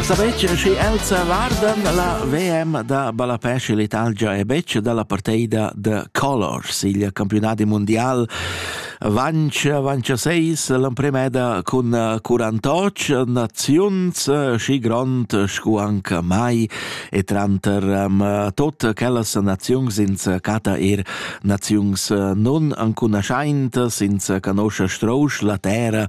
Savetg schi els vardan la VM da ballapè sche l'Italgia è betg dalla parteida de Colors. Il campionat mundial vanch vanch seis l'empremeda cun 48 naziuns schi grond scu anche mai e tranter tot quellas naziuns ins cata er naziuns nun ancunaschaint ins canoscia strousch la terra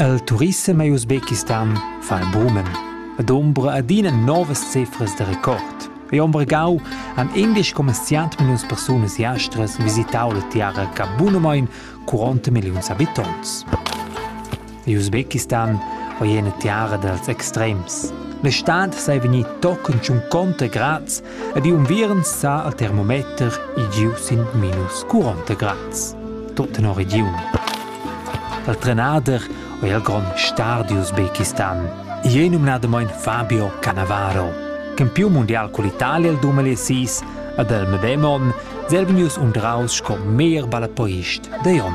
Il turissem a Usbekistan fa bumen. Ed ombra adina novas cifras da record. E Ombregau han indisch commerziant milliuns persunas jastras visitau la tiara ca bunamein 40 milliuns habitonts. In Usbekistan ei ina tiara dals extrems. La stad sei vegnì tochen tschun conta grads ed i unviern sa al termometer i giu sin minus 40 grads. Tut tenor regiun. Dal trenader è il grond star di Usbekistan. I è numnadamain Fabio Cannavaro. Campiun mundial con l'Italia il 2006 ed il medem onn sei vegnius undraus sco meglier ballapoist da onn.